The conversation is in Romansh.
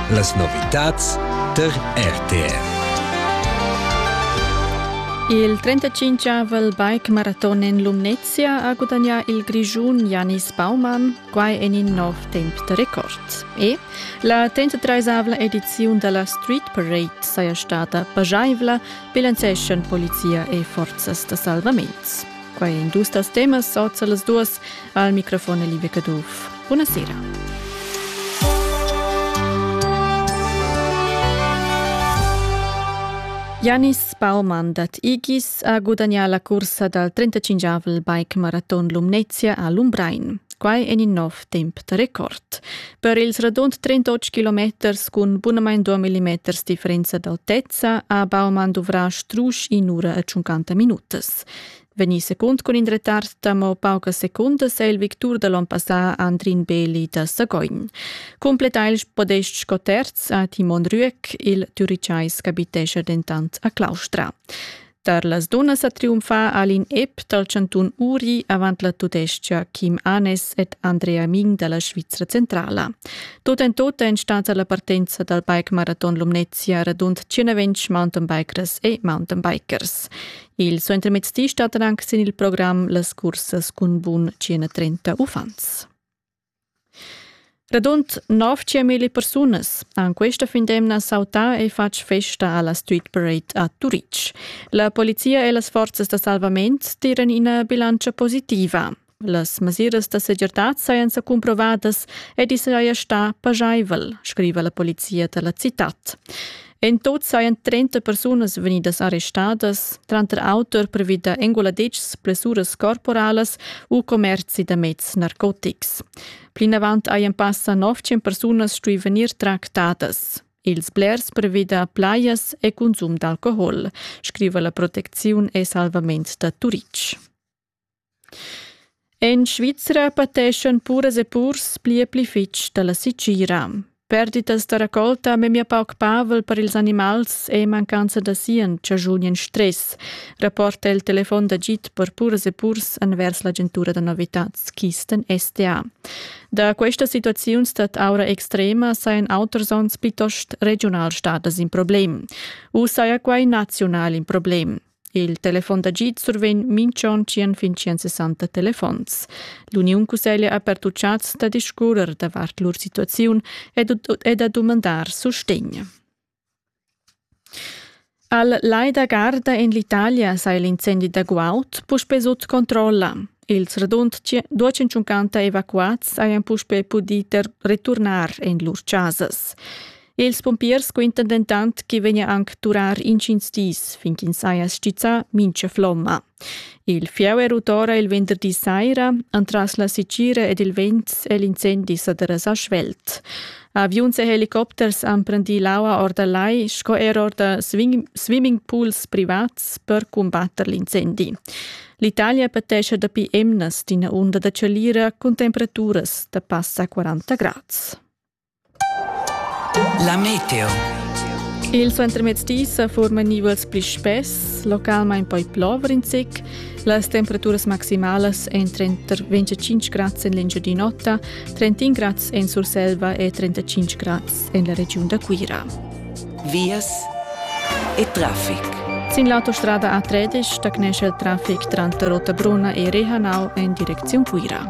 Las novitads tar RTR. Il 35-avel bike-maraton en Lumnezia ha gudagnà il Grischun Janis Baumann, quai en in nov temp da record. E la 33-avla ediziun da la Street Parade saja stada pajaivla, bilanceschan polizia e forzas da salvament. Quai in dus das temas sorts las duas al microfon Liebe Caduff. Buona sera. Janis Baumann dat Igis a gudagnà la cursa dal 35 bike maraton Lumnezia a Lumbrein. Quai en in nov temp da record. Per ils radund 38 kilometers cun bunamain 2 mm differenza d'autezza ha Baumann duvrà strusch in ura e 50 minutas. podcast. Vegnì secund cun in retard d'amo paucas secundas è il victur da l'on passà Andrin Beli da Sagogn. Completa il podest sco terz a Timon Rüeck, il Türicais capitescha dentant a Claustra. Tar las dunnas a triumfar Alin Epp dal Cantun Uri avant la tudestia Kim Anes ed Andrea Ming dalla Svizzera Centrala. Tot en tot è stata la partenza dal bike maraton Lumnezia radund 120 mountainbikers e mountainbikers. Il suentermezdi stattan anche sin il programm las cursas cun bun 130 uffants. Radund 900.000 persunas han questa fin d'emna sautà e fatg festa alla Street Parade a Turitg. La polizia e las forzas da salvament tiran ina bilancia positiva. Las mesiras da segirtad sajan sa cumprovadas ed i saja stà pajaivel, scriva la polizia da la citad. En tut sajan 30 persunas vegnidas arrestadas, tranter auter previ da enguladitschs, blessuras corporalas u commerzi da meds narcotics. Plinavant hajan passa 900 persunas stuì vegnir tractadas. Ils blers previ da plajas e consum d'alcohol, scriva la protecziun e salvament da Turitg. En Svizra pateschan puras e purs pli e pli fitg dalla setgira. Perditas da raccolta memia pauc pavel per ils animals e mancanza da sien chaschunien stress, rapporta il telefon d'agid per puras e purs envers l'agentura da novitads Kisten SDA. Da questas situaziuns stat aura extrema sajan auters onns plitost regionalstadas in problem. U saja quai naziunal in problem. Il telefon d'agid survegn minch'on tschien fin tschien 60 telefons. L'Uniun Cusseglia ha pertuchats da discurrer davart lur situaziun e da dumandar sustegn. Al Lai da Garda in l'Italia sai l'incendi da Guaut puspe sut controlla. Ils radund 250 evacuats hajan puspe pudì returnar en lur chasas. Ils pumpiers quintan dentant che vegnia anc durar intgins dis fin ch'ins saja stizzà mincha flomma. Il fieu è rut ora il venderdi saira, entras la sitgira ed il vent è l'incendi sa derasà svelt. Aviuns e helicopters han prendì l'aua or dal lai sco er or da swimming pools privats per cumbatter l'incendi. L'Italia patescha dapi emnas d'ina unda da chalira cun temperaturas da passa 40 grads. La meteo. Il suentermezzdi sa forman nivels pli spess, localmain poi plover in zic. Las temperaturas maximalas èn trenta 25 grads en l'Engiadin'Ota, 31 grads en Surselva e 35 grads en la regiun da Cuira. Vias e traffic. Sin l'autostrada A13 stagnescha il traffic tranter Rottabrona e Rehanau en direcziun Cuira.